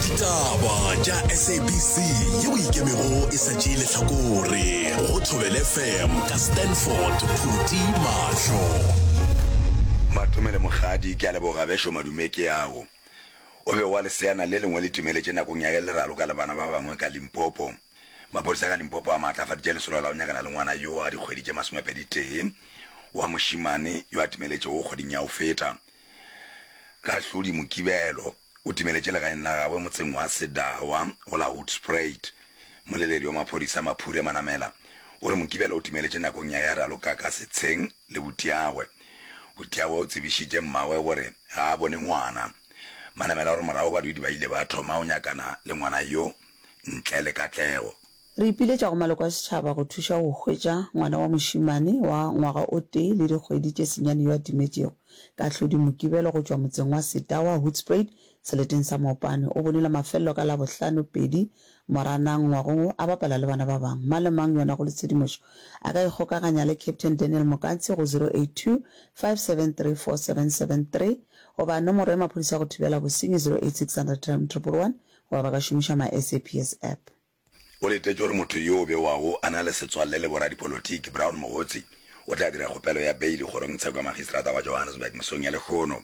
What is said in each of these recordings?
ditaba tša sabc ye o ikemego e sa tšee letlhakore go thobele fm ka stanford phuti mahlo matomele mogadi ke a leboga bešo madume ke yago o be wa leseana le lengwe le timeletše nakong ya le raloka le bana ba bangwe ka limpopo mapodisa ka limpopo a maatlafaditše lesolo la go nyakana le ngwana yo a dikgwedi tše masomepedi tee wa mošimane yo a timeletšego kgweding ya go feta Kahlodi Mokibelo o timeletše legaeng la gagwe motseng wa Sedawa go la Hoedspruit. Moleledi wa maphodisa Maphure Manamela o re Mokibelo o timeletše nakong ya ya ralokaka setsheng le Butiagwe. Butiagwe o tsebišitše mmagwe gore ga a bone ngwana. Manamela o re morago badudi ba ile ba thoma go nyakana le ngwana yo ntle le katlego. Re ipiletša go maloko a setšhaba go thuša go hwetša ngwana wa mošemane wa ngwaga o tee le dikgwedi tše senyane yo a timetšego ka hlodi Mokibelo go tšwa motseng wa Setawa, Hoedspruit, seleteng sa Mopane. O bonile mafelelo ka Labohlano, pedi, Moranang ngwagong wo a bapala le bana ba bangwe. Mang le mang yo a nago le tshedimošo a ka ikgokaganya le Captain Daniel Mokantshi go 0825734773 goba nomoro ya maphodisa go thibela bosenyi 08600111 goba ba ka šomiša mySAPS App. O letetše gore motho yo o bewago a na le setswalle le boradipolotiki, Brown Mogotsi o tla dira kgopelo ya beili kgorongtsheko ya makgistrata wa Johannesburg mesong ya lehono.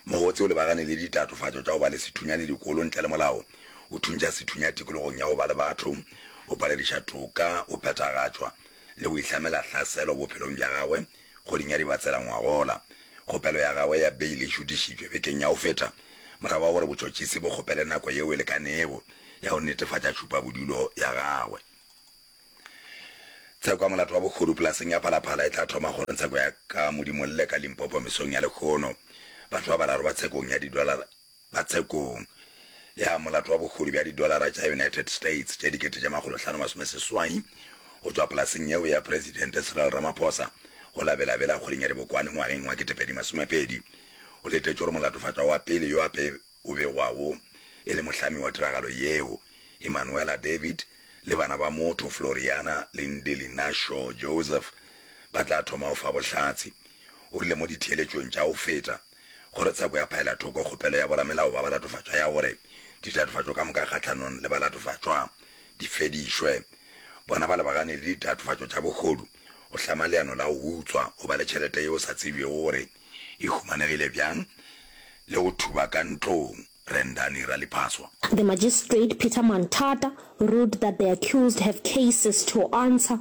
Mogotsi o lebagane le ditatofatšo tša go ba le sethunya le dikolo ntle le molao, go thuntšha sethunya tikologong ya go ba le batho, go palediša toka go phethagatšwa le go ihlamela hlaselo bophelong bja gagwe. Kgodinyadi ba tsela ngwagola. Kgopelo ya gagwe ya beile e šutišitšwe bekeng ya go feta morago ga gore botšotšisi bo kgopele nako yeo e lekanego ya go netefatša tšhupabodulo ya gagwe. Tsheko ya molato wa bogodu polaseng ya Phalaphala e tla thoma kgoro ntsheko ya ka Modimolle ka Limpopo mesong ya lekgono. Batho ba bararo ba tshekong ya didolara. ba tshekong ya molato wa bogodu bja didolara tša United States tše dikete tše makgolo hlano masome seswai go tšwa polaseng yeo ya Presidente Cyril Ramaphosa go la Bela Bela kgweding ya Dibokwane ngwageng wa kete pedi masome pedi. Go letetšwe gore molatofatšwa wa pele yo a pe o begwago e le mohlami wa tiragalo yeo, Emmanuella David, le bana ba motho Floriana le Ndeli Nasho Joseph ba tla thoma go fa bohlatse, o rile mo ditheeletšong tša go feta. gore tsheko ya phaela thoko kgopelo ya boramelao ba balatofatšwa ya gore ditatofatšo ka moka kgahlanong le balatofatšwa di fedišwe. Bona ba lebagane le ditatofatšo tša bohodu, go hlama leano la go utswa, go ba le tšhelete yeo sa tsebjego gore e humanegile bjang le go thuba ka ntlong, Rendani Raliphaswa. The Magistrate Peter Manthata ruled that the accused have cases to answer.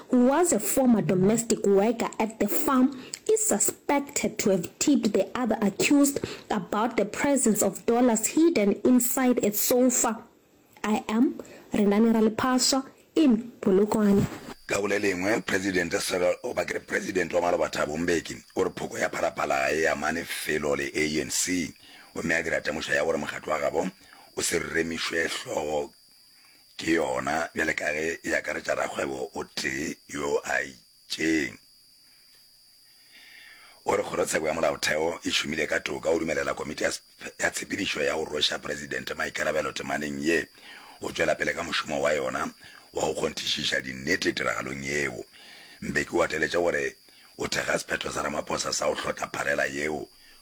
who was a former domestic worker at the farm is suspected to have tipped the other accused about the presence of dollars hidden inside a sofa I am Renani Raliphaswa in Polokwane. Ka go le lengwe, Presidente Cyril, goba ke re Presidente wa maloba Thabo Mbeki, o re phoko ya Phalaphala ga e amane felo le ANC, gomme a dira temošo ya gore mokgatlo wa gabo o se remišwe hlogo Ke yona bjale ka ge e akaretša rakgwebo o tee yo a itšeng. O re Kgorotsheko ya Molaotheo e šomile ka toka go dumelela Komiti ya ya Tshepedišo ya go Rweša Presidente maikarabelo temaneng ye go tšwela pele ka mošomo wa yona wa go kgonthišiša dinnete tiragalong yeo. Mbeki o gateletše gore o thekga sephetho sa Ramaphosa sa go hlotla pharela yeo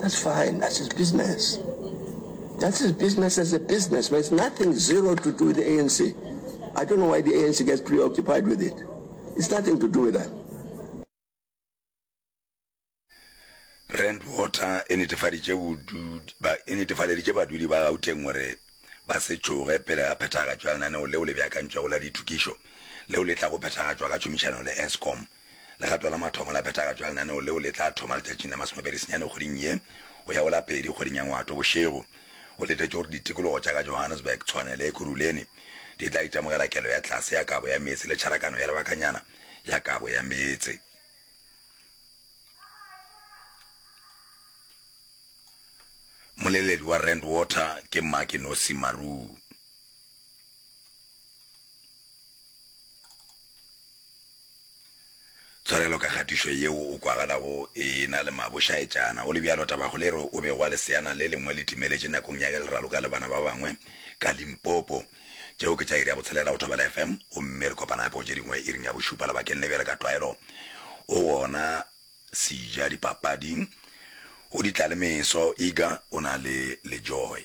That's fine. That's his business. That's his business as a business. But it's nothing zero to do with the ANC. I don't know why the ANC gets preoccupied with it. It's nothing to do with that. Rand Water e netefaditše e badudi ba gauteng gore ba se tšoge pele ga phethagatšo ya lenaneo leo le beakantšwego la dithokišo leo le tla go phethagatšwa ka tšhomišano le escom Legato la mathomo la phethagatšo ya lenaneo leo le tla thoma letšatšing la masomepedi senyane kgweding ye go ya go la pedi kgweding ya Ngwato bošego. Go letetšwe gore ditikologo tša ka Johannesburg, Tshwane le Ekurhuleni di tla itemogela kelo ya tlase ya kabo ya meetse le tšharakano ya lebakanyana ya kabo ya meetse. Moleledi wa Rand Water ke Mmake-Nosi Maruu. Tshwarelo ka kgatišo yeo o kwagalago e na le mabošaetšana. Go le bjalo, tabakgolo e re o bego a leseana le lengwe le timeletše nakong ya ge le raloka le bana ba bangwe ka Limpopo. Tšeo ke tša iri ya botshelela go Thobela FM, gomme re kopana gape go tše dingwe iring ya bošupa labakeng le bjale ka tlwaelo o gona Sejadipapading. O di tla le meso, Iga o na le lejoy.